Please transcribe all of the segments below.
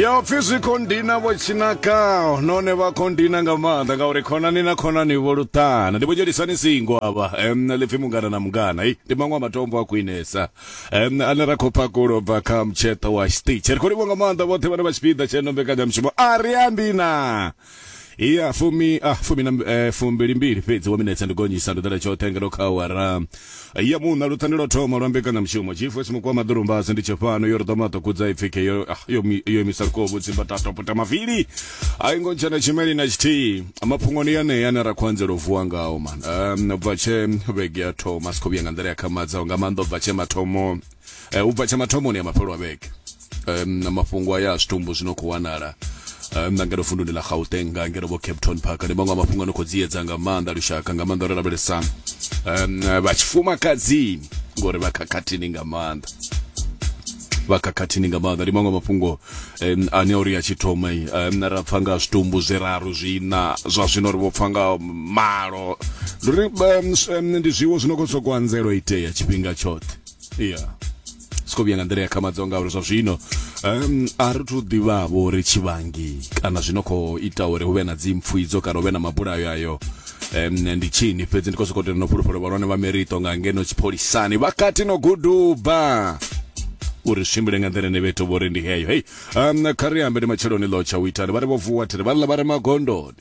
yo pfi zwi khou ndina vho tshinakaho none vha khou ndina nga maanḓa ngauri khonani na khonani vho luṱana ndi vho dzhelisani singo avha um ḽipfi mungana na mungana i ndi maṅwe a matombo a khwinesa um ane ra khou phakulo bva kha mutsheṱo wa stitch ri khou livho nga maanḓa vhoṱhe vhane vha tshipiḓa tsheno mbekanyamushumo a ri ambi na iya fumi ah, fumi na eh, fumbili mbili fhedzi wa minetse ndi gonyisa ndo ḓela tshoṱhe ngeno kha awara ya muṋa luṱani lwa thoma lwa mbekanyamushumo chifu esimukuwa maḓurumbasi ndi tshifhano yo ri ḓo maṱokudza ipfike yo ah, yo mi- yo imisa kovu tsimba tatoputa mavili a i ngo ntshena tshimeli na tshithihi mafhungoni yanea ane ra khou anzela u vuwa ngao man um, bva tshe vhege ya thoma si khou vhuya nga nḓila ya khamadzaho nga maanḓa u bva tshe mathomo eh, u bva tsha mathomoni a mafhelo a vhege um, na mafhungo aya a zwitumbu zwino khou wanala um, na ngeno vunduni ḽa gauteng nga ngeno vho cape town park ndi maṅwe a mafhungo ano khou dziedza nga maanḓa lushaka nga maanḓa ro lavhelesa um, vha tshifumakadzini ngori vha khakhathini nga maanḓa vha khakhathini nga maanḓa ndi maṅwe mafhungo um, ane uri a tshi thoma um, ra pfa nga zwitumbu zwiraru zwina zwa zwino ri vho pfa nga malo ndi ri um, ndi zwiwo zwino khou sokou anzela itea tshifhinga tshoṱhe iya yeah. siko vhuya nga nḓila ya khamadzo ngauri zwa zwino um, a ri thu ḓivhavho uri tshivhangi kana zwino khou ita uri hu vhe na dzimpfu idzo kana hu vhe na mabulayo ayo um, ndi tshini fhedzi ndi khou sokou tenda no fhulufhelo vhahulwane vha merito nga ngeno tshipholisani vha kati no guduba uri swimbile nga nḓila ine vheto vho ri ndi heyo hei um, kha ri ambe ndi matsheloni ḽo tsha u itani vha ri vho vuwa thiri vha ḽa vha re magondoni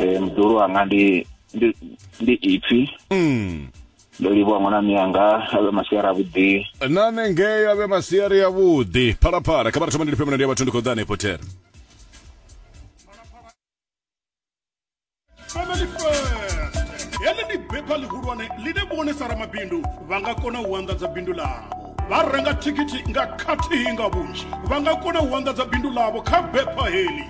eh mdulu wanga ndi ndi ndi ipfi mm. ndo livhuwa ṅwana miyanga avhe masiara avhuḓi nane ngei avhe masiari ya vhuḓi phalaphala kha vha ri thoma ndi lifhe mulandu ya vhathu ndi khou ḓa hanefho tere Family First. Heḽi ndi bepha ḽihulwane ḽine vhonisa ramabindu vha nga kona u anḓadza bindu ḽavho vha renga thikhithi nga khathihi nga vhunzhi vha nga kona u anḓadza bindu ḽavho kha bepha heḽi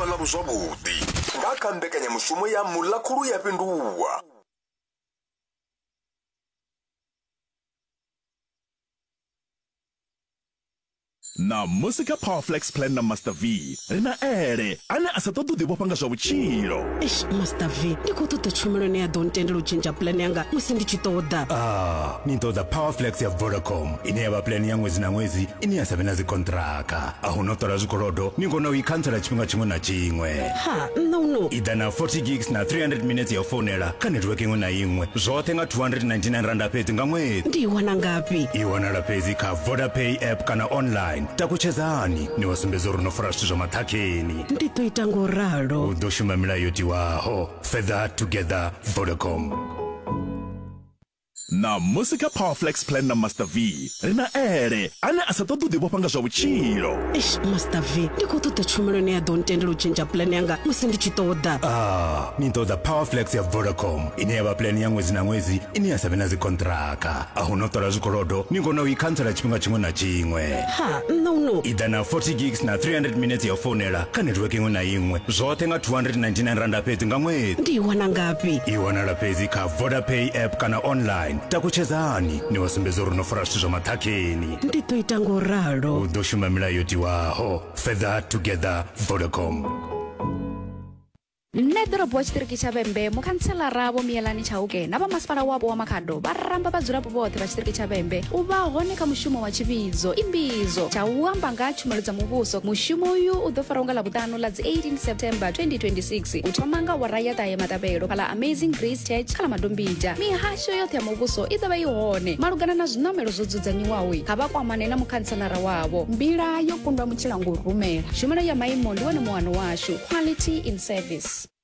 vhonavho zwavhuḓi nga kha mbekanyamushumo ya muḽakhulu ya fhindulwa Ṋamusi kha Powerflex Plan na Master V, ri na Ele, ane a sa ṱoḓi u ḓivhofha nga zwa vhutshilo. Eish Master V, ndi khou ṱoḓa tshumelo ine ya ḓo ntendela u tshentsha plan yanga musi ndi tshi ṱoḓa. Ah, ni ṱoḓa Powerflex ya Vodacom ine ya vha plan ya ṅwedzi na ṅwedzi ine ya sa vhe na dzikonṱiraka. A hu na u ṱola zwikolodo, ni kona u i khantsela tshifhinga tshiṅwe na tshiṅwe. ha nṋa u no ida na 40 gigs na 300 minutes ya u founela kha network iṅwe na iṅwe zwoṱhe nga 299 randa fhedzi nga ṅwedzi ndi i wana ngafhi i wanala fhedzi kha vodapay app kana online takutshedzani ni wa sumbedza uri no fara zwithu zwa maṱhakheni ndi ḓo ita ngo ralo u ḓo shuma milayo yo tiwaho further together vodacom Ṋamusi kha Power Flex Plan na Master V, ri na Ele, ane a sa ṱoḓi u ḓivhofha nga zwa vhutshilo. Eish, Master V, ndi khou ṱoḓa tshumelo ine ya ḓo ntendela u tshentsha plan yanga musi ndi tshi ṱoḓa. Ah, ni ṱoḓa Power Flex ya Vodacom, ine ya vha plan ya ṅwedzi na ṅwedzi ine ya sa vhe na dzikhonṱhiraka. A hu no ṱola zwikolodo, ni kona u i khantsela tshifhinga tshiṅwe na tshiṅwe. Ha, nṋe u no. I ḓa na 40 gigs na 300 minetse ya u founela kha network iṅwe na iṅwe, zwoṱhe nga R299 fhedzi nga ṅwedzi. Ndi i wana ngafhi? I wanala fhedzi kha. vodapay app kana online takutshedzani ni vha sumbedza uri no fara zwithu zwa maṱhakheni ndi ḓo ita ngo ralo u ḓo shuma milayo yo tiwaho further together vodacom nṋe ḓorobo wa tshiṱiriki tsha vhembe mukhantselara vho miyelani tshauke na vhamasipala wapo wa makhado vha ramba vhadzulapo vhoṱhe vha tshiṱiriki tsha vhembe u vha hone kha mushumo wa tshivhidzo imbidzo tsha u amba nga tshumelo dza muvhuso mushumo uyu u ḓo faraho nga ḽa vhuṱanu ḽifhano ḽa dzi 18 september 2026 u thoma nga wara ya ṱahe maṱavhelo kha ḽa amazing grace church kha ḽa madombija mihasho yoṱhe ya muvhuso i ḓovha i hone malugana na zwiṋamelo zwo dzudzanyiwaho kha vha kwamane na mukhantselara wavho mbila yo kundwa mutshila ngo rumela tshumelo ya maimo ndi wone muhano washu quality in service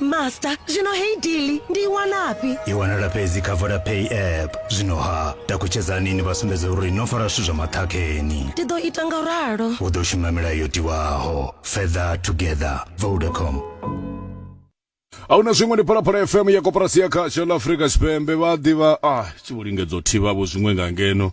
master zwino heyi dili ndi i wanafhi i wanala fhedzi kha vodapay app zwino ha takutshedzani ni vha sumbedza uri no fara zwithu zwa maṱhakheni ndi ḓo ita nga ralo u ḓo shuma milayo yo tiwaho further together vodacom a hu na zwiṅwe ndi phalaphala fm ya koporasi ya khatsho ḽa afrika tshipembe vha ḓivha a tshi vho lingedza u thivhavho zwiṅwe nga ngeno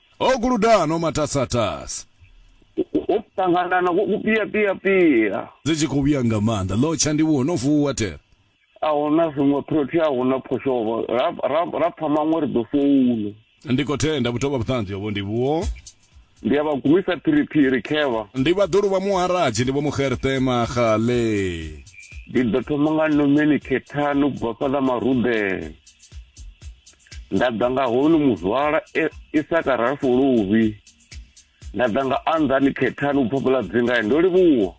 Ho guluda no matasatasa. U ṱangana na ku pia pia pia. Dzi tshi khou vhuya nga maanḓa. Ḽo tsha ndi vhuho no vuwa tere. A huna zwiṅwe phrothi a huna phoshovo. Ra pfa maṅwe ri ḓo founa. Ndi khou tenda vhutovha vhuṱanzi hovho ndi vhuho. Ndi a vha gumisa phiriphiri khevha. Ndi vha ḓulu vha muharadzi ndi vho muxerṱe maxale. Ndi ḓo thoma nga nomeni khethani u bva fhaḽa marudeni. nda ḓa nga honu muzwala e, isaka rafuluvi nda ḓa nga anḓani khethani u phaphula dzingae ndo livhuwa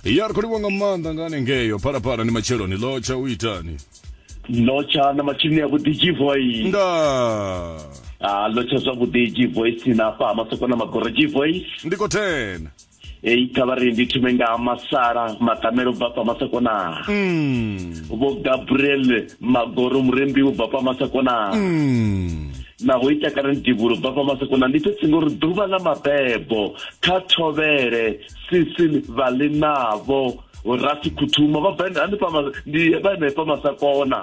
ya ri khou livhuwa nga maanḓa nga hanengeyo phalaphala ndi matsheloni lotsha u itani lotsha na matsheloni ya vhuḓi gvoy nda ah, lotsha zwavhuḓi gvoice na fha masoko na magoro gvoice ndi khou thena heyi thavha ri ndi thume nga masala matamelo bva pa masakonaa mm. vho gabriel magoro murembi wo bva pa masakonaa mm. naho i takala ndibulo bva pa masakonaa ndi fhedzi ngori ḓuvha ḽa mabebo kha thovhele sisin vhaḽi navho rasi khuthuma vha bva hanefha ndi vha hanefha masakona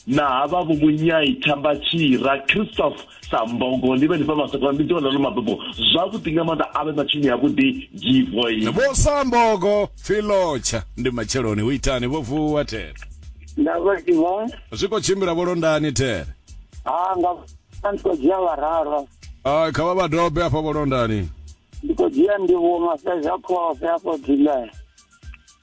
na hava vho munyai thamba tshira christoph sa mbogo ni vhe ni fha masakona ndi ḓiwa ḽa ḽo mabebo zwavhuḓi nga maanḓa a vhe matshini ya vhuḓi givoi vho sa mbogo filotsha ndi matsheloni hu itani vho vuwa there nda vha ḓivha zwi khou tshimbila vho londani there ha nga ndi khou dzhia vhararo Ah, kha vha vha dobe hafha vho londani ndi khou dzhia ndivhuwo mafhedza khofhe afho dilea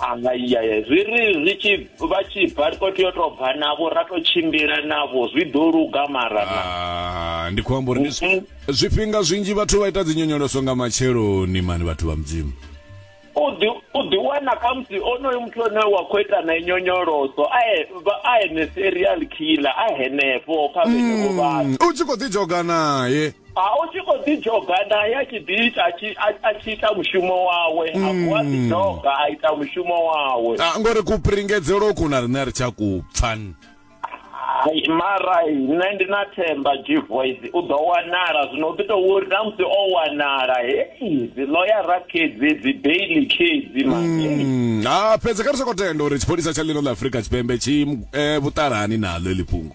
ahayaye zwi ri zwi tshi vha tshi bva ri khou tea u tou bva navho ra tou tshimbila navho zwi ḓo luga mara na Ah, ndi khou amba uri ndi zwi- Mhm. zwifhinga zwinzhi vhathu vha ita dzi nyonyoloso nga matsheloni mani vhathu vha mudzimu u ḓi u ḓi wana khamusi onoyo muthu ane wa khou ita nae nyonyoloso a e- vha- a ene serial killer a henefho kha vhenevho vhathu Mm, u tshi khou ḓi dzhoga naye a u tshi khou ḓidzhoga naye a tshi ḓi ita a tshi ita mushumo wawe a mm. vuwa ḓidzhoga a ita mushumo wawe a ah, ngori kupringedzelo ku na riṋe a ri tsha ku pfan mara nṋe ndi na themba g voice u ḓo wanala zwino u ḓi tou uri na musi o wanala hei dzi loyara khedzi dzi baily khedzi mani mm. ha ah, fhedzi kha ri soko tenda uri tshipholisa tsha ḽino ḽa afrika tshipembe tshi eh, vhuṱalani naḽo eḽi fhungo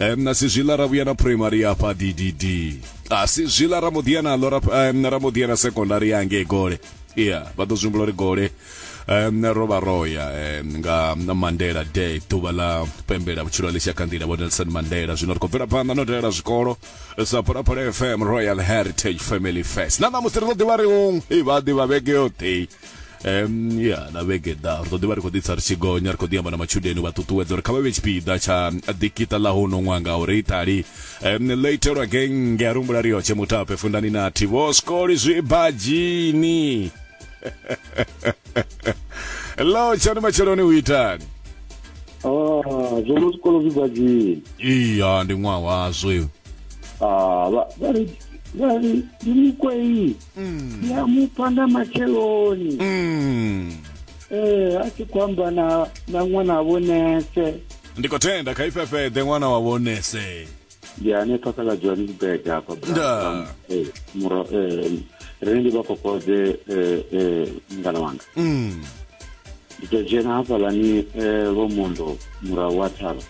um, na si zwiḽa ra vhuya na primary hafha ddd a si zwiḽa ra muḓiya naḽo ra, um, ra muḓiya na secondary ya ngei gole iya vha ḓo zwimbula uri gole um, ro vha roya um, nga mandela day ḓuvha ḽa pembela vhutshilo ḽi tshakha nḓila vho nelson mandela zwino ri khou bvela phanḓa no dalela zwikolo sa phalaphala fm royal heritage family fest na ṋamusi ri ḓo ḓivha ri hong i vha ḓivha vhege yoṱhe um ya na vhege ḓa ri ḓo ḓivha ri khou ḓitsa ri tshi gonya ri khou ḓi amba na matshudeni vha ṱuṱuwedza uri kha vha vhe tshipiḓa tsha ḓikita ḽa huno ṅwaha nga uri itali um ḽo itelwa genge a rumbula ri yotshe mutape fundani nathi vho skoli zwi badzhini ḽo tshani matsheloni u itani ah, zwono zwikolo zwi badzhini iya ndi ṅwaha wazwo ah, vha ri ndi mikwei Mm. ndi a mupfa nga matsheloni Mm. ee a tshi khou amba na na ṅwana vho nese ndi khou tenda kha ifhefheḓe ṅwana wa vhonese ndi hanefha kha ḽa johannesburg hafha Nda. muro rine ndi vha kokodze mungana wanga Mm. ndi tou dzhena hafhalani eh, vho mondo murahu wa thavha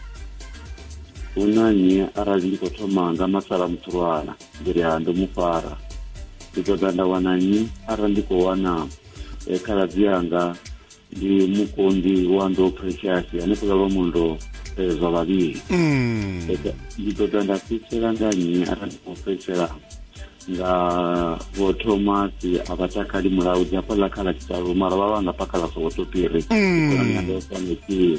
hu na nnyi arali ndi khou thoma nga masala mutsulwana ndi ri ha ndo mu fara ndi ṱoḓa nda wana nnyi arali ndi khou wana eh, khaladzi yanga ndi mukonḓi wa ndo precious hanefhaḽa lwa mundo eh, zwa vhavhili mm. ndi ṱoḓa nda fhedzisela nga nnyi arali ndi khou fhedzisela nga vho thomasi a vha takali mulawu dzi hafhaḽa khala tshitalu mara vha vha nga pakhala sokoto piri mm. khonani yanga yo fanekile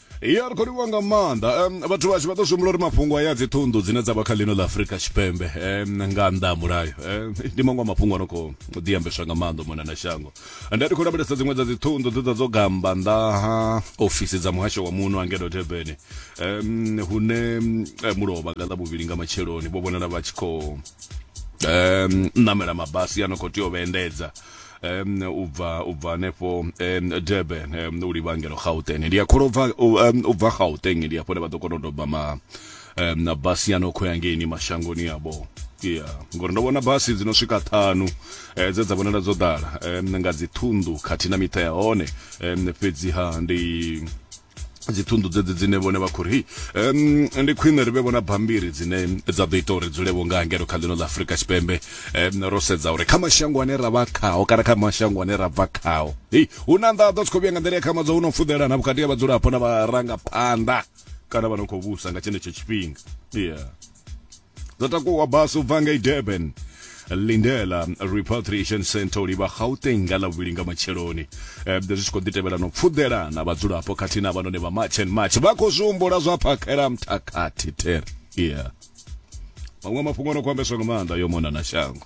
ya ri khou livhuwa nga maanḓa um, vhathu vhashu vha ḓo zwi humbula uri mafhungo aya dzi ṱhunḓu dzine dza vha kha ḽino ḽa afurika tshipembe um, nga nnḓa ha mulayo um, ndi maṅwe a mafhungo ano khou ḓiambeswa nga maanḓa mona na shango nda ri khou lavhelesa dziṅwe dza dzi ṱhunḓu dze dza dzo gamba nnḓa ha ofisi dza muhasho wa muno angelo debene um, hune eh, mulovha nga ḽa vhuvhili nga matsheloni vho vhonala vha tshi khou um, namela mabasi ano khou tea u vhaendedza um u bva u bva hanefho um durban um u livha ngelo gauteng ndi a kholo bva u bva gauteng ndi afho ne vha ḓo kona u doba ma um na basi ya no khou ya ngeini mashangoni yavho ya ngori ndo vhona basi dzi no swika ṱhanu um dze dza vhonala dzo ḓala um nga dzi ṱhunḓu khathihi na miṱa ya hone um fhedziha ndi dzi thundu dzedzi dzine vhone vha khori um ndi khwine ri vhe vhona bambiri dzine dza ḓo ita uri dzule vho nga ngeno kha ḽino ḽa afurika tshipembe um ro sedza uri kha mashango ane ra vha khao kana kha mashango ane ra bva khao hei hu na nḓaḓo tshi khou vhuya nga nḓila ya khamadzo hu no fudelana vhukati ha vhadzulapo na vharangaphanḓa kana vha no khou vhusa nga tshenetsho tshifhinga yeah dzo takuwa basi u bva ngei durban lindela repatriation center u livha gauteng nga ḽavhuvhili nga matsheloni um zwi tshi khou ḓi tevhela no pfuḓela na vhadzulapo khathihi na vhanone vha march and march vha khou zwi humbula zwa phakhela mthakhathi ter yeah maṅwe mafhungo no khou ambeswa nga maanḓa yo mona na shango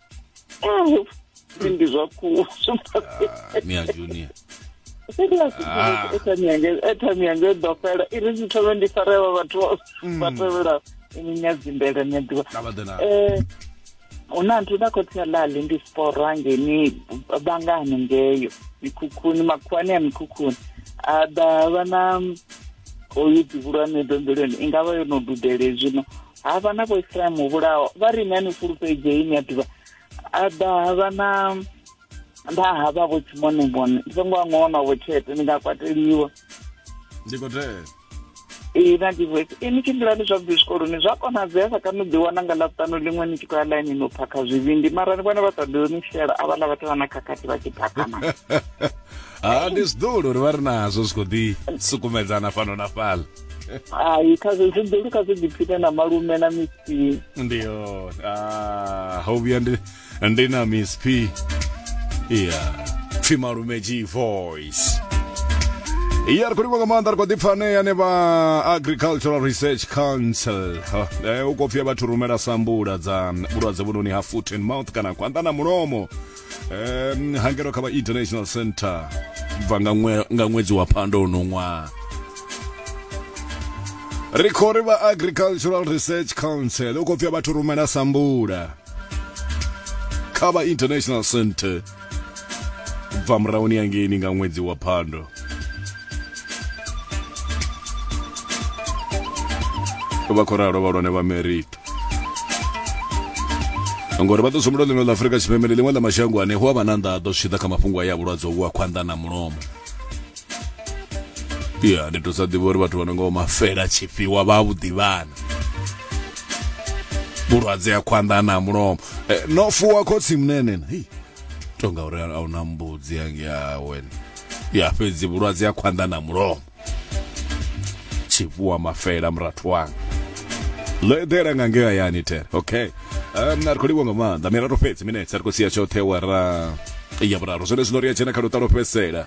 Eh, ndi zwa khuwa ah, mia junior ah. airtime yanga i ḓo fela i ri zithome ndi farela vhathu mm. vha tevhela nyadzimbele nyaḓivha um hu na nthu na khotsi ya lali ndi sporo angeni vanga hanengeyo mikhukhuni makhuwani ya mikhukhuni a ḓa vha na oyu ḓivhulwane dombelweni i nga vha yo no dudele zwino ha vha na vhoisrael muvhulaho vha ri ni a ni fulufhedzei ni a ḓivha a ḓa ha vha na nda ha vha vho tshimonimone ndi songo a ṅona vho tshete ni nga kwateliwa ndi khou tea ee na divoice e ni tshimbilani zwavhuḓi zwikoloni zwa konadzea sa kani u ḓiwana nga ḽaṱanu ḽiṅwe ni tshi khou ya ḽainini u phakha zwivhindi mara ni vhone vha sa ḓo ni shela a vhaḽa vhathu vha na khakhathi vha tshi phakana ha ndi zwiḓolo uri vha ri nazwo zwi khou ḓi sukumedzana fhano na fhaḽa hai kha zwi ḓulu kha zwi ḓiphine na malume na miss p ndi yone ah, ho vhuya ndi ndi na miss p iya pfi malume g voice iya ri khou livha nga maanḓa ri khou ḓi pfanea ne vha agricultural research council Ha, eh, u khou pfia vhathu rumela sambula dza vhulwadze vhunoni ha foot and mouth kana khwanḓa na mulomo um, hangelo kha vha international center bva nga ṅwedzi wa phando uno ṅwaha ri khou ri vha agricultural research council u khou pfia vhathu rumela sambula kha vha international center bva murahuni yangeini nga ṅwedzi wa phando vha khou ralo vhalwane vha merita ngori vha ḓo sumbulo ḽino ḽa afurika tshipembe ndi ḽiṅwe ḽa mashango ane hu a vha na nḓaḓo zwi tshi ḓa kha mafhungo a ya vhulwadze uvhu wa khwanḓa na mulomo ya ndi to sa ḓivha uri vhathu vha no nga mafela tshifhiwa vha vhuḓivhana vhulwadze ya khwanḓa na mulomo eh, no fuwa khotsi mnenena hei tonga uri a una mbudzi yange yawe ya fhedzi vhulwadze ya khwanḓa na mulomo tshivhuwa mafela murathu wanga ḽo eḓela nga ngea yani tere okay um, ri khou livhwa nga maanḓa mirato fhedzi minetse ri khou sia tshoṱhe wara ya vhuraru zwone zwino ri a dzhena kha luṱa lwa fhedzisela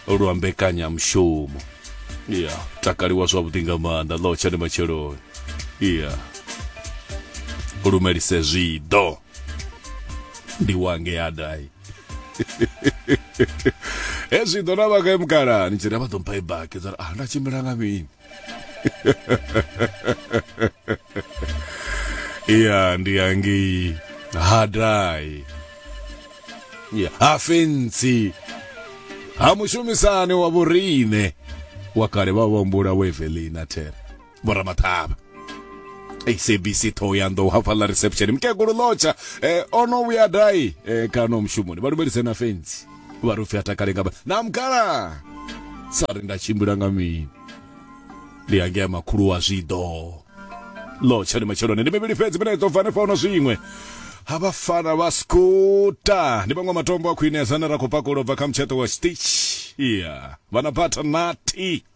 lwa mbekanyamushumo ya takaliwa zwavhuḓi nga maanḓa ḽo tshani matsheloni ya lumelise zwiḓo ndi wange adai hezwi ḓo na vhaka ye mukalani tshi ri vha ḓo mpha i baki dza ah nda tshimbila nga mini ya ndi yangei hadai ya ha fentsi ha mushumisani wa vhorine wa kale vha vha humbula wevelina thera vho ramathavha sabc thohoyanḓou hafha ḽa reception mukegulu lotsha eh, o no vhuya dai eh, kana mushumoni vha lumelise na fenzi vha ri upfi a takale nga na mukhala sa ri nda tshimbila nga mini ndi yangea makhulu wa zwiḓo lotsha ndi matsheloni ndi mivhili fhedzi mina iḓo bva hanefha hona zwiṅwe ha vhafana vha skuta ndi vhaṅwe matombo a khwinesa ane ra khou pakulo bva kha mutsheṱo wa stitch iya vhana bata nati